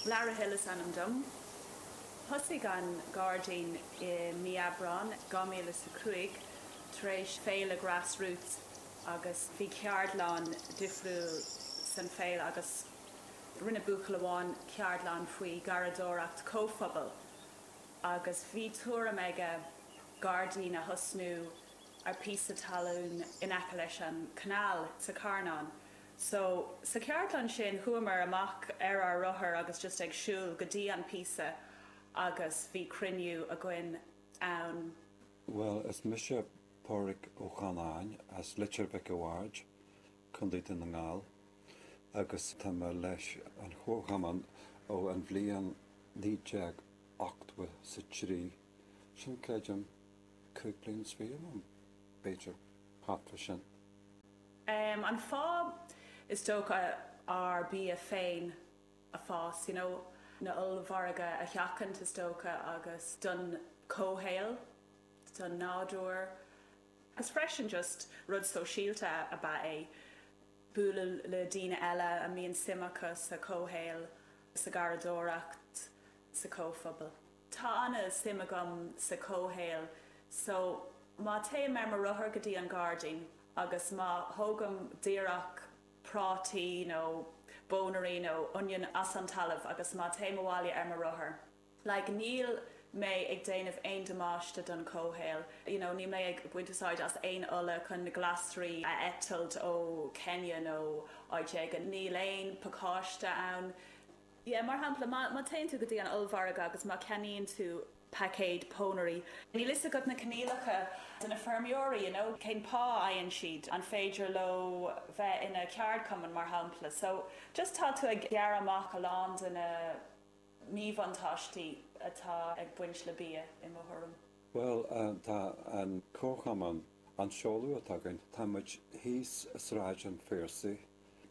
Larra Hill is ainm dom. Thosaigh an gairdín i mí Aibreáin 2005 tar éis féile Grassroots agus bhí ceardlann difriúil san féile agus rinne buachaill amháin ceardlann faoi gharraíodóireacht comhphobail agus bhí tuairim aige gairdín a thosnú ar píosa talún in aice leis an canáil sa Carnán. So, sa cheardlann sin, chuamar amach ar ár rothair agus just ag siúl go dtí an píosa agus bhí cruinniú againn ann. Bhuel, is mise Pádraig Ó Canainn as Leitir Mhic a' Bhaird, Co. Dún na nGall, agus tá mé leis an chomharchumann ó an bhliain naoi déag ochtó 's a trí, sin, creidim, cúig bliain 's fiche, um, b'fhéidir, thart fá sin. an fáth, is dócha, ár bia féin a fás, you know na ollmhargaí a sheachaint, is dócha, agus don chomhshaol, don nádúr, agus freisin just rud sóisialta ab ea é, bualadh le daoine eile a mbíonn suim acu sa chomhshaol, sa gharraíodóireacht, sa chomhphobal. Tá an-suim agam sa comhshaol so má théim ar mo rothar go dtí an gairdín agus má thógaim díreach prátaí nó pónairí nó oinniún as an talamh agus má théim abhaile ar mo rothar, like níl mé ag déanamh aon damáiste don chomhshaol, you know níl mé ag baint úsáid as aon ola chun na glasraí a eitilt ó Kenya nó áit éigin, níl aon pacáiste ann. Sea, mar shampla, má théann tú go dtí an ollmhargadh agus má cheannaíonn tú paicéad pónairí, níl fhios agat na coinníollacha de na feirmeoirí, you know, cén pá a fhaigheann siad, an féidir leo bheith ina ceardchumann, mar shampla. So, just tá tú ag gearradh amach a lán de na míbhuntáistí atá ag baint le bia, i mo thuairim. Bhuel, tá an comharchumann, an seoladh atá againn, tá muid thíos Sráid an Phiarsaigh,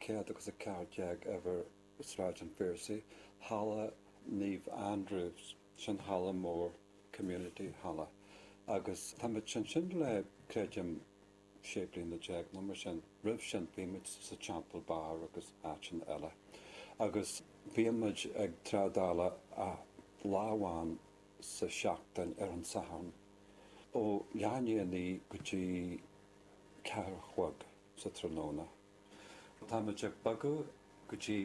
céad agus a ceathair déag go a. Sráid an Phiarsaigh, Halla Naomh Andrews, sin halla mór, Community Halla, agus táimid ansin le, creidim, sé bliana déag nó mar sin. Roimh sin bhí muid sa Temple Bar agus áiteanna eile. Agus bímid ag trádáil lá amháin sa seachtain ar an Satharn ó leath i ndiaidh a naoi go dtí ceathair a chlog sa tráthnóna. Táimid ag bogadh go dtí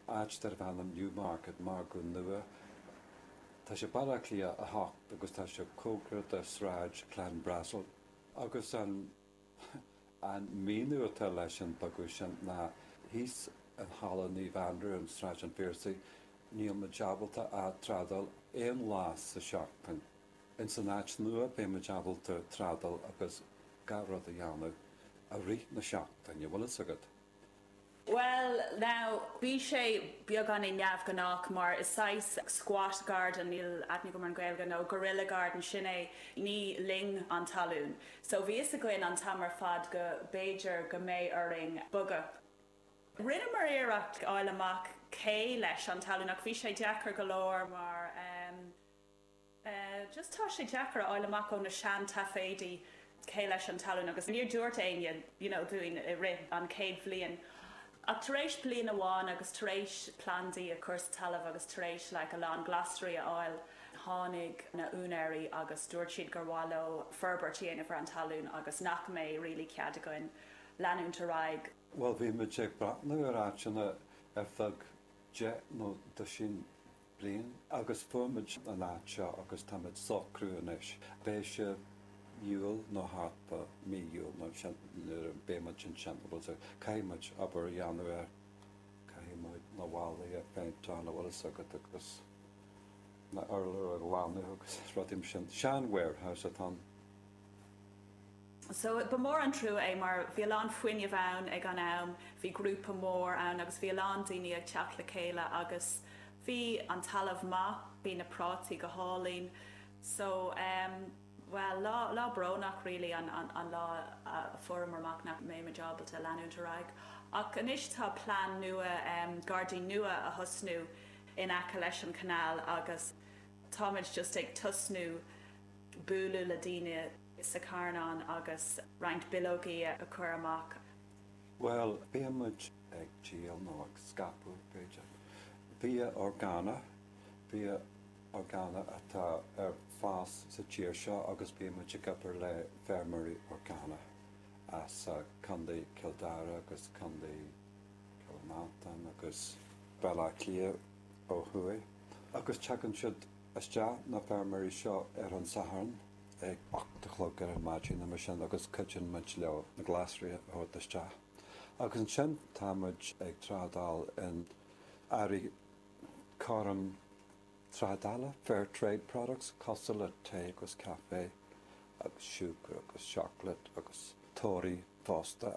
áit darb ainm Newmarket, Margadh Nua. Tá sé Baile Átha Cliath 8 agus tá sé cóngarach do Shráid Clanbrassil. Agus an an míniú atá leis an bogadh sin ná thíos in Halla Naomh Anrú in Sráid an Phiarsaigh, níl muid ábalta trádáil aon lá sa tseachtain. Ins an áit nua beidh muid ábalta trádáil agus gach rud a dhéanamh i rith na seachtaine, bhfuil a fhios agat. Bhuel, now, bhí sé beagáinín neamhghnách mar is saghas squat garden, níl aithne agam ar an Ghaeilge, nó guerilla garden, sin é, ní linn an talún. So bhí a fhios againn an t-am ar fad go b'fhéidir go mbeidh orainn bogadh. Rinneamar iarracht a fháil amach cé leis an talún ach bhí sé deacair go leor mar, em, agus tá sé deacair a fháil amach ó na seantaifeadaí cé leis an talún agus níor dúirt éinne you know dúinn i rith an chéad bhliain ach tar éis bliain amháin agus tar éis plandaí a chur sa talamh agus tar éis like a lán glasraí a fháil tháinig na úinéirí agus dúirt siad gur mhaith leo forbairt a dhéanamh ar an talún agus nach mbeidh really cead againn leanúint ar aghaidh. Bhuel bhí muid ag breathnú ar áiteanna ar feadh deich nó doisín bliain agus fuair muid an áit seo agus táimid ag socrú anois, beidh sé Iúil nó thart fá mí Iúil nó ansin nuair a bheidh muid ansin agus caithfidh muid obair a dhéanamh air, caithfidh muid na ballaí a phéinteáil an bhfuil a fhios agat agus na urláir a ghlanadh agus rudaí mar sin. Sean warehouse atá ann. So ba mhór an trua é mar bhí a lán fuinneamh ann ag an am, bhí grúpa mór ann agus bhí a lán daoine ag teacht le chéile agus bhí an talamh maith, bhí na prátaí go hálainn. So em bhuel lá, lá brónach really an, an, an lá a fuaireamar amach nach mbeidh muid ábalta leanúint ar aghaidh. Ach anois tá plean nua em gairdín nua a thosnú in aice leis an canal agus táimid just ag tosnú bualadh le daoine, sa Charnán agus roinnt bileogaí a chur amach. Bhuel, bíonn muid ag díol nó ag scaipeadh, b'fhéidir, bia orgánaí, bia orgánaí atá ar fás sa tír seo agus bíonn muid ag obair le feirmeoirí orgánaí as Contae Chill Dara agus Contae Chill Mhantáin agus Baile Átha Cliath ó thuaidh agus tagann siad isteach, na feirmeoirí seo, ar an Satharn. ag ocht a chlog ar maidin, nó mar sin agus cuidíonn muid leo na glasraí a thabhairt isteach. Agus ansin tá muid ag trádáil in earraí cothrom trádála, fair trade products, cosúil le tae agus caife agus siúcra agus seacláid agus torthaí fosta.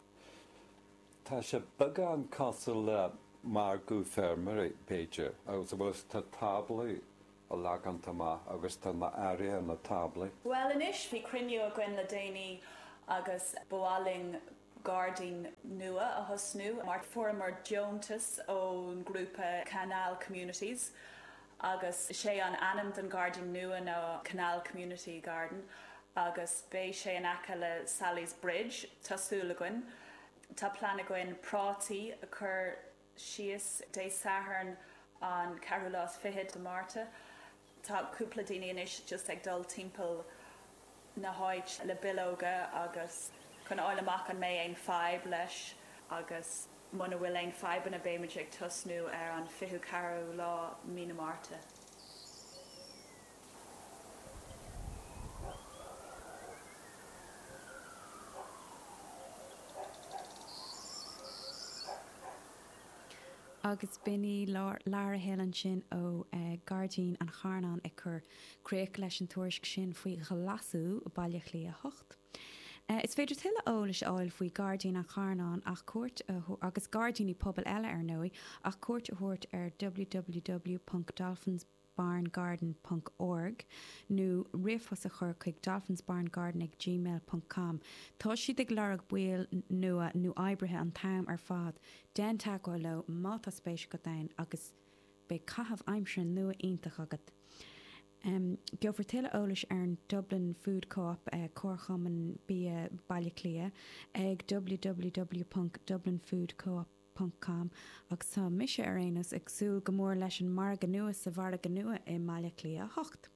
Tá sé beagán cosúil le margadh feirmeoirí, b'fhéidir, agus a bhfuil, tá táblaí á leagan amach agus tá na hearraí ar na táblaí. Bhuel anois, bhí cruinniú againn le déanaí agus ba mhaith linn gairdín nua a thosnú mar fuaireamar deontas ón grúpa Canal Communities agus sé an ainm don gairdín nua ná Canal Community Garden agus beidh sé in aice le Sally's Bridge tá súil againn. Tá plean againn prátaí a chur. síos Dé Sathairn an ceathrú lá is fiche de Mhárta. Tá cúpla daoine anois just ag dul timpeall na háite le bileoga agus chun a fháil amach an mbeidh aon fadhb leis agus muna bhfuil aon fadhbanna beimid ag tosnú ar an fichiú ceathrú lá Mí na Márta. agus b'in í Lara Hill ansin ó Gairdín an Charnáin ag cur críoch leis an tuairisc sin faoi ghlasú Bhaile Átha Cliath 8. Is féidir tuilleadh eolais a fháil faoi Gairdín an Charnáin ach cuairt a agus gairdíní pobail eile ar ndóigh ach cuairt a thabhairt ar www.dolphins barngarden.org nó ríomhphost a chur chuig dolphinsbarngarden ag gmail.com Tá siad ag lorg baill nua nó oibrithe an t-am ar fad, déan teagmháil leo má tá spéis agat ann agus beidh caitheamh aimsire nua iontach agat! Gheofar tuilleadh eolais ar an Dublin Food Co-op, Comharchumann Bia Bhaile Átha Cliath, ag www.dublinfoodcoop. com, agus tá mise, ar aon nós, ag súil go mór leis an margadh nua sa Mhargadh Nua i mBaile Átha Cliath 8.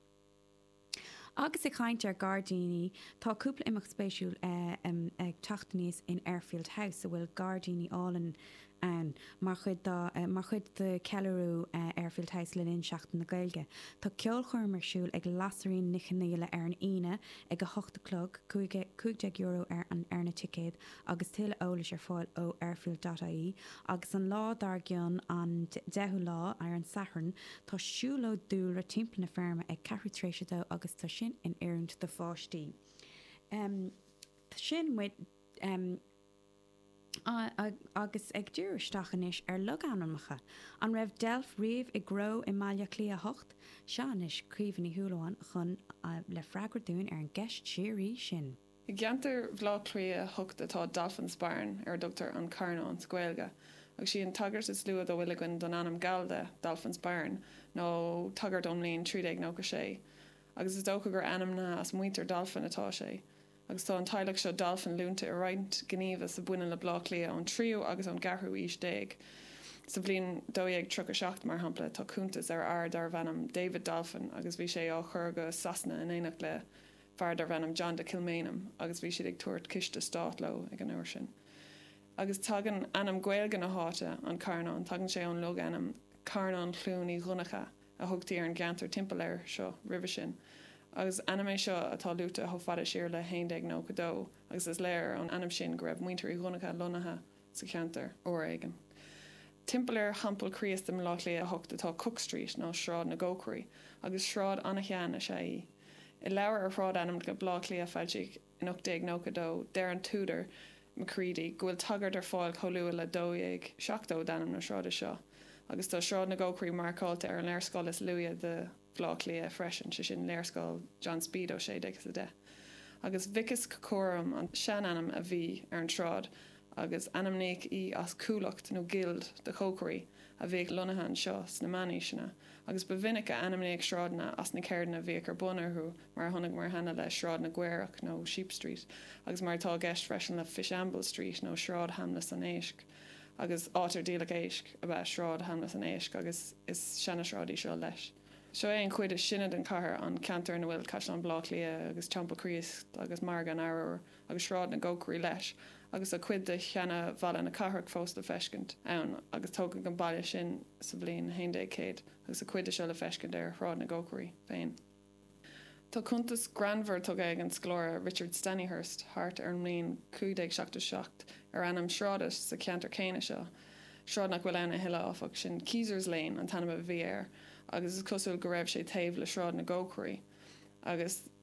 Agus ag caint ar ghairdíní, tá cúpla imeacht spéisiúil ag teacht aníos in Airfield House, a bhfuil gairdíní álainn ann, mar chuid dá, mar chuid de cheiliúradh Airfield House le linn Sheachtain na Gaeilge. Tá ceolchoirm ar siúl ag Lasairfhíona Ní Chonaola ar an Aoine ag a hocht a chlog, €15 ar na ticéid, agus tuilleadh eolais ar fáil ó Airfield dot ie agus an lá dár gcionn, an 10ú lá, ar an Satharn, tá siúlóid dúlra timpeall na feirme ag ceathrú tar éis a dó agus tá sin in oiriúint do pháistí. Sin muid agus ag díriú isteach anois ar logainmneacha. An raibh deilf riamh i gcró i mBaile Átha Cliath 8? Seo anois Caoimhe Ní Shúilleabháin chugainn le freagra dúinn ar an gceist síoraí sin. I gceantar Bhleá Cliath 8 atá Dolphin's Barn, ar a dtugtar An Carnán sa Ghaeilge, agus sí an tagairt is luaithe dá bhfuil againn don ainm gallda Dolphin's Barn, ná tagairt ón mbliain 1396, agus is dócha gur ainmnithe as muintir Dolphin atá sé, agus tá an teaghlach seo Dolphin luaite i roinnt gníomhas a bhaineann le Bleá Cliath ón tríú agus ón gceathrú aois déag. Sa bhliain 1237, mar shampla, tá cuntas ar fhear darbh ainm David Dolphin, agus bhí sé á chur go Sasana in éineacht le fear darbh ainm John de Kilmainham agus bhí siad ag tabhairt ciste stáit leo ag an uair sin. Agus tagann ainm Gaeilge na háite, An Carnán, tagann sé ón logainm Carnán Chluain Uí Dhonncha a thugtaí ar an gceantar timpeall air seo roimhe sin. Agus ainm é seo atá luaite chomh fada siar le 1192 agus is léir ón ainm sin go raibh Muintir Uí Dhonncha lonnaithe sa cheantar uair éigin. Timpeall ar Theampall Chríost i mBleá Cliath 8 atá Cook Street nó Sráid na gCócairí agus sráid ana-shean is ea í. I leabhar ar shráidainmneacha Bhleá Cliath a foilsíodh in 1892, deir an t-údar, McCready, go bhfuil tagairt ar fáil chomh luath le 1270 d'ainm na sráide seo, agus tá Sráid na gCócairí marcáilte ar an léarscáil is luaithe de Bhleá Cliath freisin, sé sin, léarscáil John Speed ó 1610. Agus Vicus Cocorum an seanainm a bhí ar an tsráid. agus ainmníodh í as cuallacht nó gild de chócairí a bhíodh lonnaithe anseo sna meánaoiseanna, agus ba mhinic a ainmníodh sráideanna as na ceirdeanna a bhíodh ar bun orthu, mar a chonaiceamar cheana le Sráid na gCaorach nó Ship Street, agus mar atá i gceist freisin le Fishamble Street nó Sráid Sheamlas an Éisc, agus áit ar díoladh éisc ab ea Sráid Sheamlas an Éisc, agus is seanasráid í seo leis. Seo é an chuid is sine den chathair, an ceantar ina bhfuil Caisleán Bhleá Cliath agus Teampall Chríost agus Margadh an Arbhair. agus Sráid na gCócairí leis, agus tá cuid de sheana-bhalla na cathrach fós le feiscint ann, agus tógadh an balla sin sa bhliain 1100, agus tá cuid de seo le feiscint ar Shráid na gCócairí féin. Tá cuntas greannmhar tugtha ag an scoláire Richard Stanihurst thart ar an mbliain 1577 ar ainm sráide sa cheantar céanna seo, sráid nach bhfuil ann a thuilleadh, áfach. Sin Keyser's Lane an t-ainm a bhí air, agus is cosúil go raibh sé taobh le Sráid na gCócairí, agus.